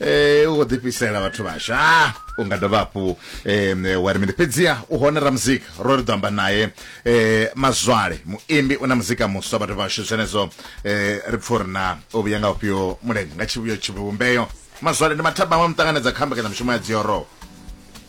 eh u khou ḓifhisela vhathu vhasha ah, u nga dovha hafhu um wa ri mini fhedziha u hone ra muzika ro ri ḓo amba naye um mazwale muimbi u na muzika muswa vhathu vhashu zwenezwo um ri pfa uri na o vhuya nga ufhio mulenzhe nga tshivhuyo tshivhumbeo mazwale ndi mathabama muṱanganedza kha mbekanyamushumo ya dzioroho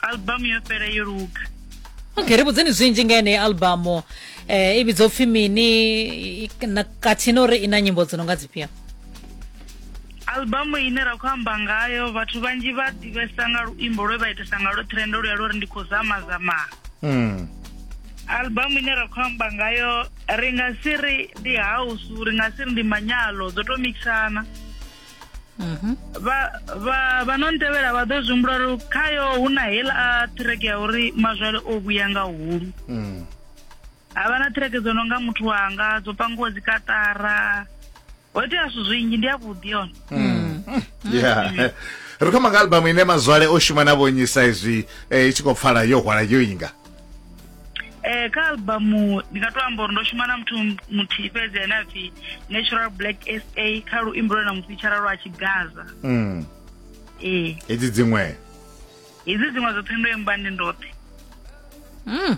albamu yo fhela yo luga okay ri vhudzeni zwinzhi nga yeneyi albamu eh, i vhidzwa upfhi mini i- i- na- khathihi na uri i na nyimbo dzo no nga dzifhio albamu ine ra khou amba ngayo vhathu vhanzhi vha ḓivhesa nga luimbo lwe vha itesa nga lwo trend luya lwo ri ndi khou zama zama Mm. albamu ine ra khou amba ngayo ri nga si ri ndi house ri nga si ri ndi manyalo dzo to mixana Mhm. vha no ntevhela vha ḓo zwi humbula uri khayo hu na hela a ṱhireke ya uri mazwale o vhuya nga hulu mm. ha vha na ṱhireke dzo no nga muthu wanga dzo pangiwa dzikaṱara ho itea zwithu zwinzhi ndi yavhuḓi yone mm. mm. ri khoma nga albamu ine mazwale o shuma na vhonyisa izwi eh, i tshi khou pfala yo hwala yo inga Eh, kha albamu ndi nga to amba uri ndo shuma na muthu muthihi fhedzi ane a pfi natural black sa kha luimbo lwe na mufitshara lwa tshigaza mm. ee hedzi dziṅwe hedzi dziṅwe dzoṱhe ndo imba ndi ndoṱhe Mm.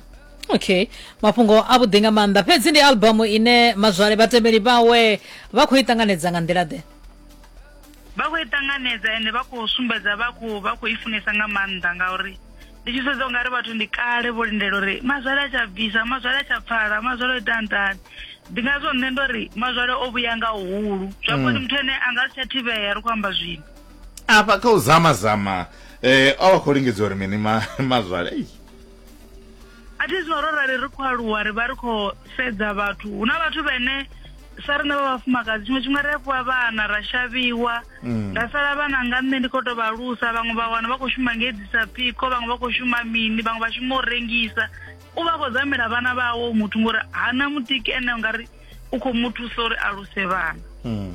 okay mafhungo avhuḓi nga maanḓa fhedzi ndi albamu ine mazwale vhatevheli vhawe vha khou i ṱanganedza nga nḓila ḓe Vha khou i ṱanganedza ende vha khou sumbedza vha khou vha khou i funesa nga maanḓa ngauri ndi tshi sedza ungari vhathu ndi kale vho lindela uri mazwale a tsha bvisa mazwale a tsha pfala mazwale o ita ntani ndi ngazwo nṋe ndo ri mazwale o vhuya nga uhulu zwa mm. koni muthu ene a nga si tsha thivhea ri khou amba zwino afha kha u zama zama um o vha khou lingedza uri mini mazwale a thi zwino ro rali ri khou aluwa ri vha ri khou sedza vhathu hu na vhathu vhene sa riṋe vha vhafumakadzi tshiṅwe tshifhinga ri a fhiwa vhana ra shavhiwa mm. ra sala vhana nga nṋe ndi khou tou vha lusa vhaṅwe vha wana vha khou shuma ngei disa phiko vhaṅwe vha khou shuma mini vhaṅwe vha shuma u rengisa u vha khou zamela vhana vhawo muthu ngori hana mutiki ene ungari u khou mu thusa uri a luse vhana mm.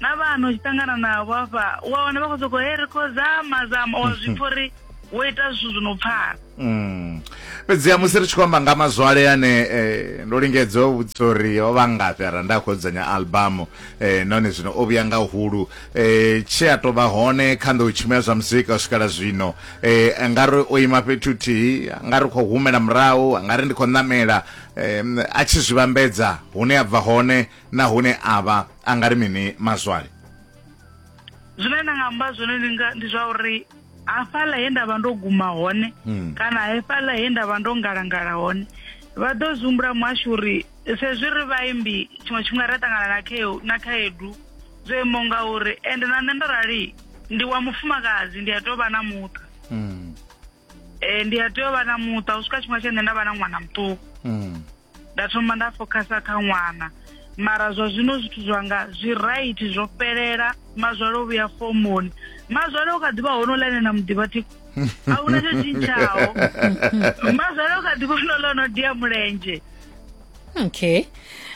na vhana u tshi ṱangana navho hafha u a wana vha khou sokou he ri khou zama zama wa zwi pfha uri wo ita zwithu zwi no pfala Mm. fhedziha musi ri tshi khou amba nga mazwale ane eh, ndo lingedza u vhudzisa uri o vha ngafhi ara nda khou dzudzanya albamu eh, nahone zwino o vhuya nga hulu eh, tshe a tou vha hone kha nḓou tshimo ya zwa muzika u swikela zwino eh, nga ri o ima fhethu huthihi nga ri khou humela murahu nga ri ndi khou ṋamela eh, a tshi zwi vhambedza hune a bva hone nahone avha a nga ri mini mazwale zwine nda nga amba zwone ndi nga ndi zwa uri hafhaḽa he nda vha ndo guma hone hmm. kana hafhaḽa he nda vha ndo ngalangala hone vha ḓo zwi humbula muhashu uri sezwi ri vhaimbi tshiṅwe tshifhinga ra ṱangana na khaedu na khaedu zwo imaho nga uri ende na nṋe ndo rali ndi wa mufumakadzi ndi a tou vha na muṱa hmm. Eh, ndi a tea u vha na muṱa u swika tshifhinga tshe nṋe nda vha na ṅwana muṱuku mm. nda thoma nda focusa kha ṅwana mara zwa zwino zwithu zwanga zwi right zwo fhelela mazwale o vhuya fomoni mazwale u kha ḓivha hono ḽa ene na muḓivha thiko a huna tsho tshintshaho mazwale u kha ḓivha hono ḽa ono dia mulenzhe okay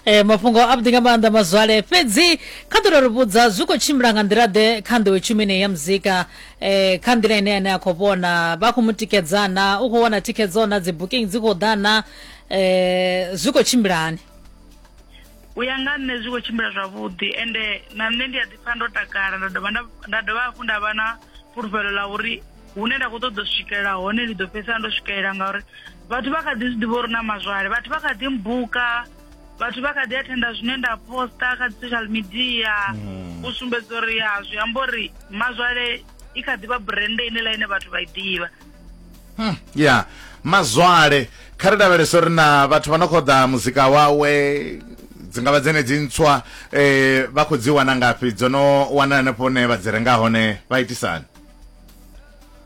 e, mafhungo a vhuḓi nga maanḓa mazwale fhedzi kha ḓo ri vhudza zwi khou tshimbila nga nḓila ḓe kha nḓowe tshumeni ya muzika e, kha nḓila ine ane a khou vhona vha khou mu tikedzana u khou wana thikhedzo na dzi booking dzi khou ḓana e, zwi khou tshimbila hani u ya nga nṋe zwi khou tshimbila zwavhuḓi ende na nṋe ndi a ḓipfa ndo takala nda dovha nda dovha hafhu nda vha na fhulufhelo ḽa uri hune nda khou ṱoḓa u swikelela hone ndi ḓo fhedzisela ndo swikelela ngauri vhathu vha kha ḓi zwi ḓivha uri na mazwale vhathu vha kha ḓi mbuka vhathu vha kha ḓi athenda zwine nda posta kha dzi social media mm. u sumbedza uri ya zwi amba uri mazwale i kha ḓi vha brende ine la ine vhathu vha i ḓivha hmm, ya mazwale kha ri lavhelesa uri na vhathu vha no khou ḓa muzika wawe dzi nga vha dzene dzi ntswa um vha khou dzi wana ngafhi dzo no wana hanefho hune vha dzi renga hone vha itisani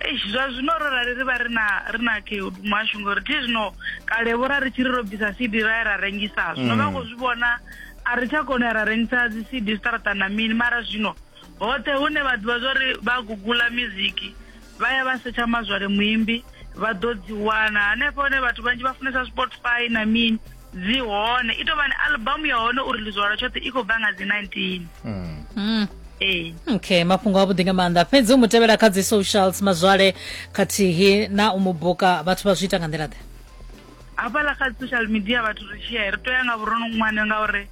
Eish, zwa zwino ro rali ri vha ri na ri na khaedu muhashu ngori thi zwino kale vho ra ri tshi ri ro bvisa cd ra ya ra rengisa zwino vha khou zwi vhona a ri tsha kona u ya ra rengisa dzi cd zwiṱaraṱa na mini mara zwino hoṱhe hune vha ḓivha zwa uri vha gugula miziki vha ya vha setsha mazwale muimbi vha ḓo dzi wana hanefho hone vhathu vhanzhi vha funesa spotify na mini dzi hone i tou vha ni albamu ya hone uri lizwa lwa tshoṱhe i khou bva nga dzi 19 Mm. ee okay mafhungo avhuḓi nga maanḓa fhedzi u mu tevhela kha dzi socials mazwale khathihi na u mu buka vhathu vha zwi ita nga nḓila ḓe hafhaḽa kha dzi social media vhathu ri tshi ya ri tou ya nga vhurono ṅwane ngauri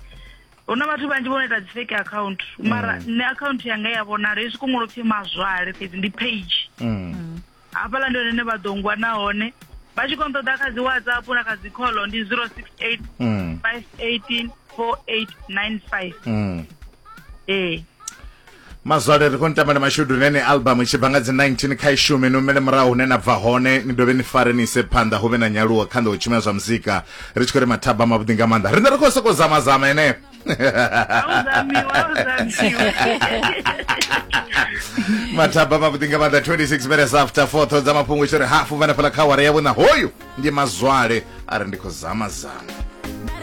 hu na vhathu vhanzhi vho no ita dzi fake account mara nṋe account yanga ya vhonala hezwi kungolo pfhi mazwale fhedzi ndi page Mm. hafhaḽa ndi hone ne vha ḓo ngwa nahone vha tshi kono ṱoḓa kha dzi whatsapp na kha dzi call ndi 068 518 4895 ee mazwale ri khou ni tamba na mashudu nene album i tshi bva nga dzi 19 kha i shume ni umele murahu hune na bva hone ni dovhe ni fare ni ise phanḓa hu vhe na nyaluwo kha nḓa u tshumela zwa muzika ri tshi khou ri mathaba mavhuḓi nga maanḓa riṋe ri khou sokou zamazama ene mataba mavhuḓi nga maanḓa 26 minutes after 4 ṱho dza mafhungo tshi ri hafu vhanefhala kha wara yavho na hoyu ndi mazwale a ri ndi khou zama zama